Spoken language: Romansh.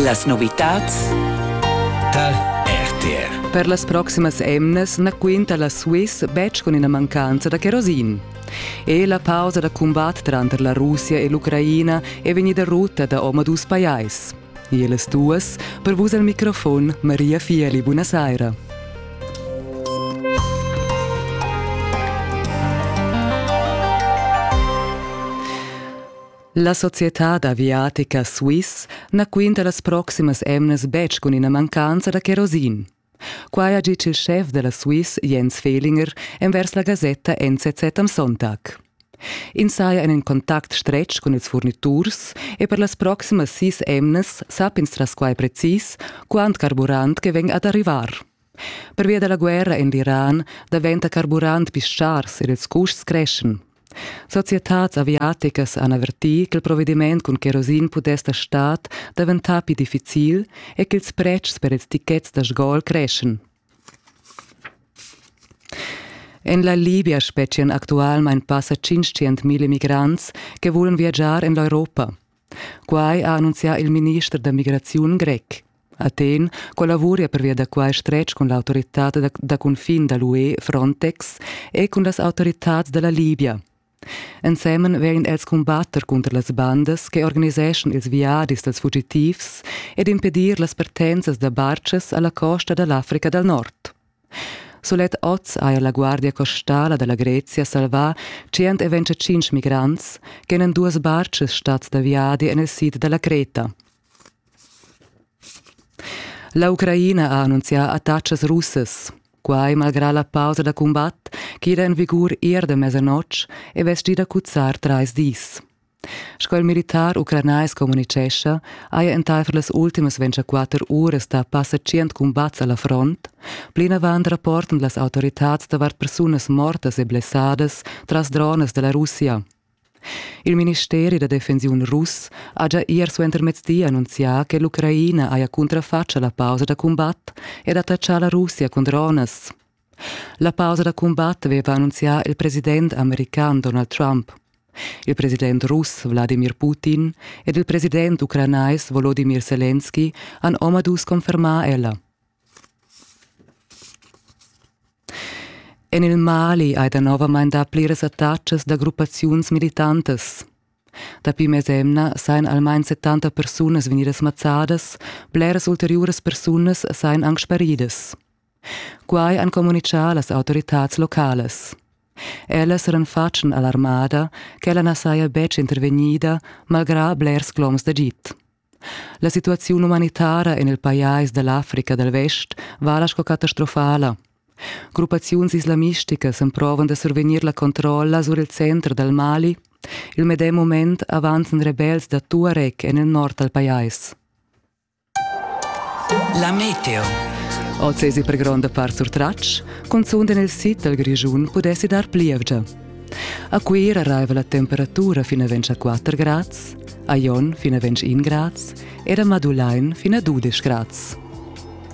Las novitads dal RTR. Per las proximas emnas na quinta la Swiss betg cun ina mancanza da kerosin. E la pausa da cumbat tranter la Russia e l'Ucraina è vegnida rutta da omadus pajais. Ellas duas, per vus al microfon Maria Fieli, buonasera. La societad aviatica Swiss na quinta las proximas emnas betg cun ina mancanza da cherosin. Quai ha ditg il schef da la Swiss Jens Fehlinger envers la gasetta NZZ am Sonntag. Ins saja en in contact stretg cun ils furniturs e per las proximas sis emnas sapp'ins tras quai precis quant carburant che vegn ad arrivar. Pervia da la guerra en l'Iran daventa carburant pli schars ed ils custs creschen. Societads aviaticas han avertì ch'il provediment cun kerosin pudess da stad daventar pli difficil e ch'ils pretschs per ils tichets da sgol creschen. En la Libia spetgian actualmain passa 500.000 migrants che vulan viagiar en l'Europa. Quai ha annunzià il minister da migraziun grec. Athen collavuria pervia da quai stretg cun l'autoritad da, da cunfin da l'UE Frontex e cun las autoritads da la Libia. Ensemen vegn els cumbatter cunter las bandas che organiseschan ils viadis dals fugitivs ed impedir las partenzas da bartschas a la costa da l'Africa dal Nord. Sulet oz haja la Guardia costala da la Grezia salvà tschient e ventgatschintg migrants ch'èn en duas bartgas stads da viadi en il sid da la Creta. La Ucraina ha annunzià attacas russas. Quai malgrà la pausa da cumbat ch'era en vigur ier da mesanotg e vestgida cuzzar trais dis. Sco il militar ucranais communitgescha, haja entaifer las ultimas 24 uras da passa 100 cumbats a la front, plinavant rapportan las autoritads davart persunas mortas e blessadas tras dronas da la Russia. Il ministeri da defensiun russ ha già ier suentermezdi annunzià che l'Ucraina haja cuntrafatg la pausa da cumbat ed attachà la Russia cun dronas. La pausa da cumbat aveva annunzià il president american Donald Trump. Il president russ Wladimir Putin ed il president ucranais Volodimir Selenski han omadus confermà ella. En il Mali hai danovamain dapli resatatschas da gruppaziuns militantas. Dapi mesemna sajan almain 70 persunas vegnidas mazzadas, bleras ulteriuras persunas sajan anc sparidas. Quai han communitgà las autoritads localas. Ellas eran fatschen alarmada ch'ella na saja betg intervegnida malgrà blers cloms d'agid. La situaziun umanitara en il pajais da l'Africa dal Vest vala sco catastrofala. Gruppaziuns islamisticas emprovan da survegnir la controlla sur il center dal Mali. Il medem moment avanzan rebels da Tuareg en il nord dal pajais. La meteo. Oz èsi per gronda part surtratg, cunzunt en il sid dal Grischun pudessi dar plievgia. A Cuira raiva la temperatura fin a ventg a 4 grads, a Jon fin a ventg 1 grads ed a Madulain fin a 12 grads.